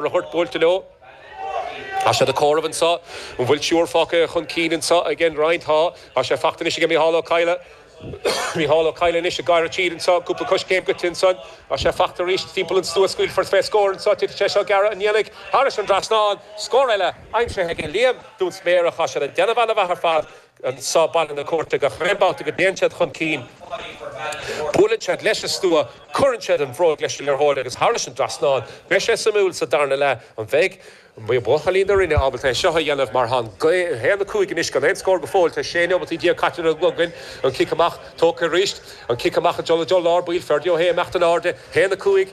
Rupert buailte leo. Tá siad ag comhaireamh anseo. An bhfuil triúr fágtha chun cinn anseo ag an Rinn? Tá. Tá sé fachta anois ag Micheál Ó Cadhla. Micheál Ó Cadhla anois ag gearradh tríd anseo. Cúpla coiscéim goite ansan. Tá sé fachta arís timpeall an stua. Scaoilfear fé scór anseo. Titfidh sé seo gearra an ndéanfaidh. Thairis an dtrasnán. Scór eile aimsithe ag Liam Dúnsméarach. Tá siad ag déanamh ana mhaith ar fad. so Baile na Cúirte. Gach aon babhta go dtéann siad chun cinn buaileann siad leis an stua, cuireann siad an bhróg leis an liathróid agus thar leis an dtrasnán. Beidh sé suimiúil sa darna leath an mbeidh buachaillí na Rinne ábalta é seo a dhéanamh mar tá a haon a cúig anois gan aon scór go fóill. Tá 16 nóimeataí caite ar an gclog againn. An cic amach tógtha arís. An cic amach ag dul i dtreo lár baill. Ferdia Ó hAodha ag imeacht in airde. 1, 5.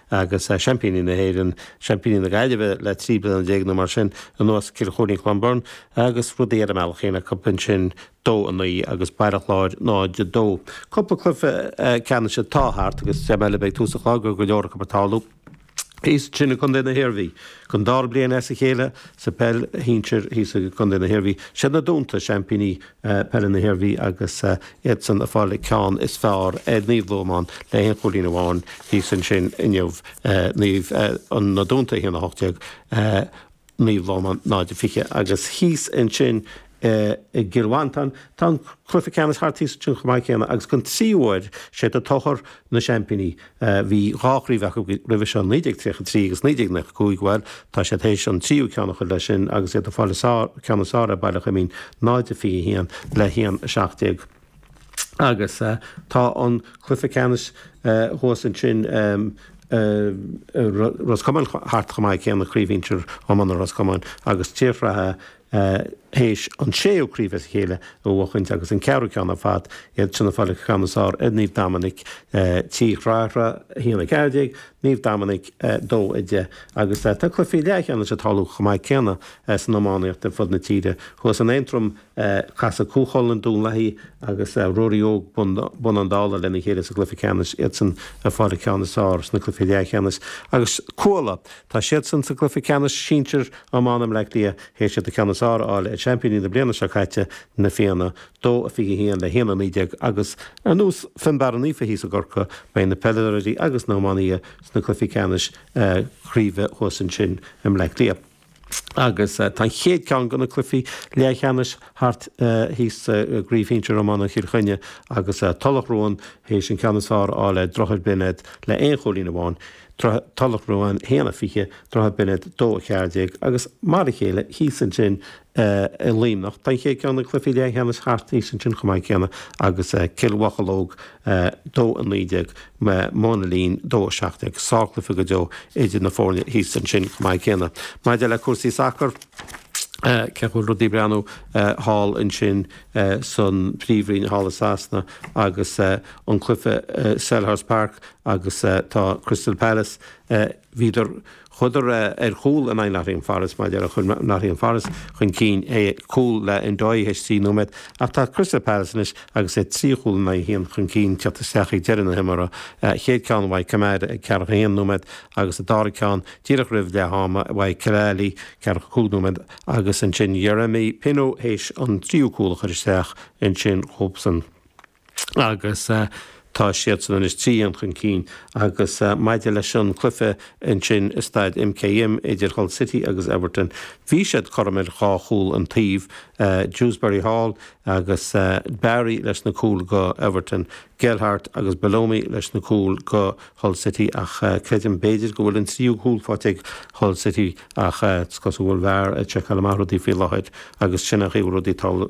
agus seaimpíní na hÉireann, seaimpíní na Gaillimhe le trí bliana déag nó mar sin anuas, Cill Choirín-Clonberne, agus rudaí ar a mbealach féin acu ansin, dó, a naoi, agus Baile Chláir, náid, a dó. Cúpla cluiche ceannais atá thart agus dream eile a bheidh ag tús an chláir go raibh go leor acu ag tarlú thíos ansin i gcontae na hIarmhí. Don dara bliain as a chéile sa bpeil shinsir thíos i gcontae na hIarmhí, siad Na Dúnta seaimpíní Peile na hIarmhí agus iadsan ag fáil an ceann is fearr ar Naomh Lomán le haon chúilín amháin thíos ansin inniu. Naomh Na Dúnta 1, 18, Naomh Lomán 0, 20. Agus thíos ansin i gCill Mhantáin tá an cluiche ceannais thart thíos ansin chomh maith céanna agus don tríú uair is iad An Tóchar na seaimpíní, a bhí dhá chraobh acu roimhe seo, 1933 agus 1995, bhuel, tá siad théis an tríú ceann a chur leis sin agus iad ag fáil an ceann is fearr ar Baile Coimín, 0-21 le 1-17. Agus tá an cluiche ceannais thuas ansin i Ros Comáin thart chomh maith céanna, Craobh Shinsir Iomána Ros Comáin agus Tigh Srathra a théis an séú craobh as a chéile a bhuachaint agus an ceathrú ceann ar fad, iadsan ag fáil an ceann is fearr ar Naomh Dominic, Tigh Srathra, 1, 14, Naomh Dominic, 2, 10, agus tá cluichí leathcheannais ag tarlú chomh maith céanna san iománaíocht ar fud na tíre. Thuas in Aontroim casfaidh Cú Chulainn, Dún Lathaí agus Ruairí Óg, Bun Abhann Dalla, lena chéile sa gcluiche ceannais, iadsan ag fáil an ceann is fearr sna cluichí leathcheannais, agus Cuala, Tá siadsan sa gcluiche ceannais sinsir iomána mBleá Cliath théis iad an ceann is fearr a fháil ar sheaimpíní na bliana seo caite, Na Fianna, 2-21 le 1-19, agus ar nós Fionnbarra Naofa thíos i gCorcaigh, beidh na peileadóirí agus na hiománaithe sna cluichí ceannais craoibhe thuas ansin i mBleá Cliath. Agus tá an chéad ceann de na cluichí leathcheannais thart thíos i gcraobh shinsir iomána Chill Chainnigh agus Tulach Ruáin théis an ceann is fearr a fháil ar Dhroichead Binéid le haon chúilín amháin, Droichead Tulach Ruáin 1 20, Droichead Binéid 2 14 agus mar a chéile thíos ansin i Luimneach tá an chéad cheann de na cluichí leathcheannais thart thíos ansin chomh maith céanna agus Cill Mhocheallóg 2 19, Móin a' Lín 2 17. Sárchluiche go deo idir na foirne thíos ansin chomh maith céanna. Maidir le cúrsaí sacair, cén chaoi a bhfuil rudaí ag breathnú thall ansin san phríomhroinn thall i Sasana agus an cluiche i Selhurst Park Agus tá Crystal Palace, bhíodar, chuadar ar chúl in aghaidh Nottingham Forest, Nottingham Forest chun cinn le cúl le Ndoye théis trí nóiméad, ach tá Crystal Palace anois agus iad trí chúl in aghaidh a haon chun cinn tiocht isteach ag deireadh na himeartha, chéad ceann uaidh Kamada ag ceathracha a haon nóiméad agus an dara ceann díreach roimh leath ama uaidh Khalaili ceathracha cúig nóiméad agus ansin Yeremy Pino théis an tríú cúl a chur isteach ansin dóibhsean. agus tá siadsan anois trí aon chun cinn agus maidir leis an cluiche ansin i staid MKM idir Hull City agus Everton bhí siad cothrom ar dhá chúl an taobh, Dewsbury Hall agus Barry leis na cúil go Everton, Gelhardt agus Belloumi leis na cúil go Hull City ach creidim b'fhéidir go bhfuil an tríú cúl faighte ag Hull City ach is cosúil go bhfuil VAR ag seiceáil amach rudaí faoi láthair agus sin a thabharfaidh rudaí